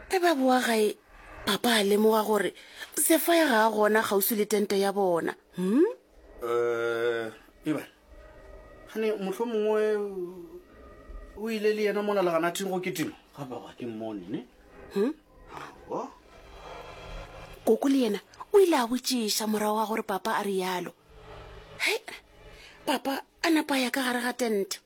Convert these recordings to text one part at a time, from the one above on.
e ba boa gae papa a lemoga gore sefaya ga a gona kgauswi le tente ya bona hmm? eh, eba gane motlho mongwe o ile le yena mona leganathing go ketimo ga baba ke mmone ne hmm? koko le yena o ile a botšiša morago wa gore papa a rialo he papa a napa ya ka gare ga tente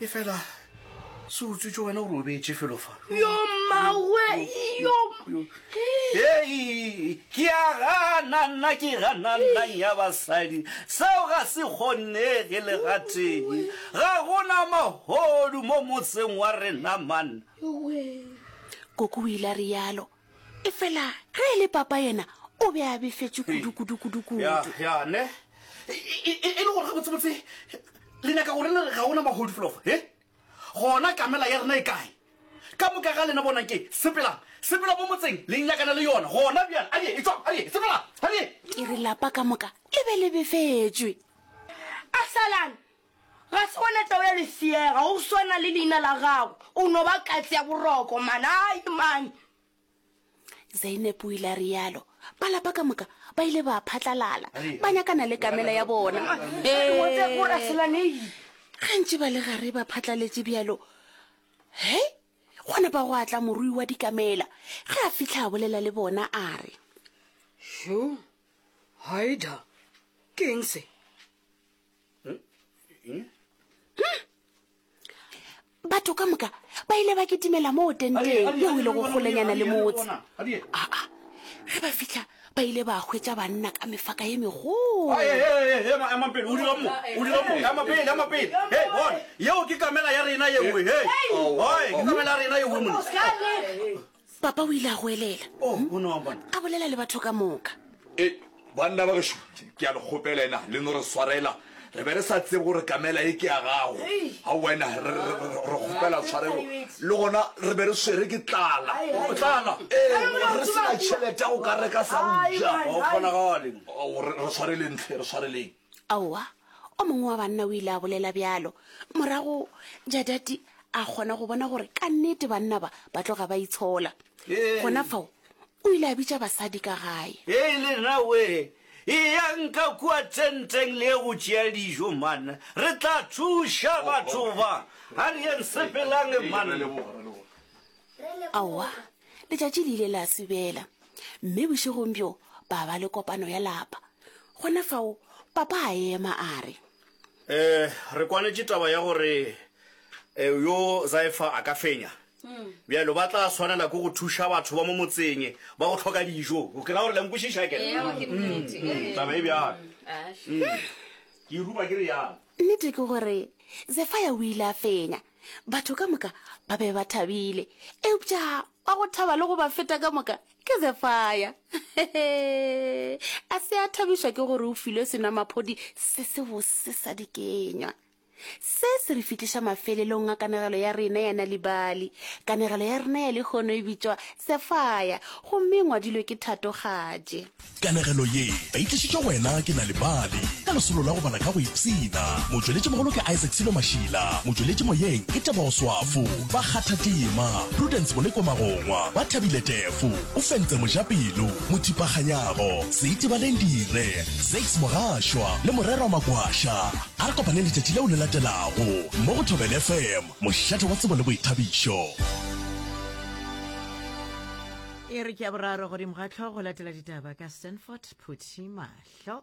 e fela se utswitse wena o robetse felo fa yo mawe yo hei ke a gana nna ke gana nnang ya basadi seo ga se kgonege le ga tee ga gona mahodu mo motseng wa rena manna koko o ile a rialo efela ge e le papa yena o be a befetše kudukudukudukudu ya ya ne E- e- e- e le gore ga botsebotse le nyaka gore le re ga ona mahodu felofa e gona kamela ya rena e kae ka moka ga lena bonang ke sepelang sepela mo motseng le nyakana le yona gona bjale a die e tswang a die sepelang a die ke re lapa ka moka le be le befetšwe absalom Ga se wena tau ya lefšega, go swana le leina la gago, o no ba katse ya boroko, manai, mane. Zeineb o ile a realo. Ba lapa ka moka ba ile ba phatlalala, ba nyakana le kamela ya bona. Gantši ba le gare ba phatlaletše bjalo. He, gona ba go atla morui wa dikamela. Ge a fitlha a bolela le bona a re. Sho, Haida, keng se? batho ka moka ba ile ba ketimela moo tenteng yeo e lego kgolenyana le motse aa ge ba fitlha ba ile ba hwetša banna ka mefaka ye megoloyeo ke kamela ya rena yeoe papa o ile a go elela a bolela le batho ka moka e banna ba gešo ke a le kgopela ena le no re swarela re be re sa tsebe gore kamela e ke ya gago ga wena re kgopela tshwarelo le gona re be re swere ke tlala tlala re sena tšhelete ya go ka reka sa go ja re tshwareleng tle re tshwareleng aowa O mongwe wa banna o ile a bolela bjalo. Morago Jadati a kgona go bona gore ka nnete banna ba ba tloga ba itshola. Gona fao o ile a bitša basadi ka gae. Hei lena we, eyang ka kua tenteng le ye go tšea dijo, man. Re tla thuša batho ba. A re yeng sepelang, man. Aowa, letšatši le ile la se bela. Mme bošegong bjo ba ba le kopano ya lapa. Gona fao Papa a ema a re. Eh, re kwanetše taba ya gore eh, yo Zaifa a ka fenya. Bjalo ba tla swanela ke go thuša batho ba mo motseng ba go hloka dijo. Ke ra gore la nkwešiša ke re. Taba e bjalo. Ke ruba ke re yang. Nnete ke gore Zefaya o ile a fenya. batho ka moka ba be ba thabile eupša wa go thaba le go ba feta ka moka ke zefaya a se a thabišwa ke gore o filwe senamaphodi se se bose sa dikenywa se se re fihliša mafelelong a kanegelo ya rena ya na libali kanegelo ya rena ya lekgono e bitšwa sefaya gomme ngwadilwe ke thatogatše Kanegelo ye ba e tlišitšwe go wena ke Nal'ibali ka lesolo la go bala ka go ipshina. Motšweletšimogolo ke Isaac Sello Mashila, motšweletši moyeng ke Tebogo Swafo, ba kgatha tema, Prudence Moleko Magongwa, ba thabile tefo, o fentse Mojapelo, Mothipa Kganyago, Seitibaleng Dire, Zakes Mogashwa le Morerwa Magwasha. A re kopaneng letšatši leo le latelago mo go Thobela FM, mošate wa tsebo le boithabišo. e re ke ya boraro godimo ga tlhogo latela ditaba ka stanford phuthi mahlo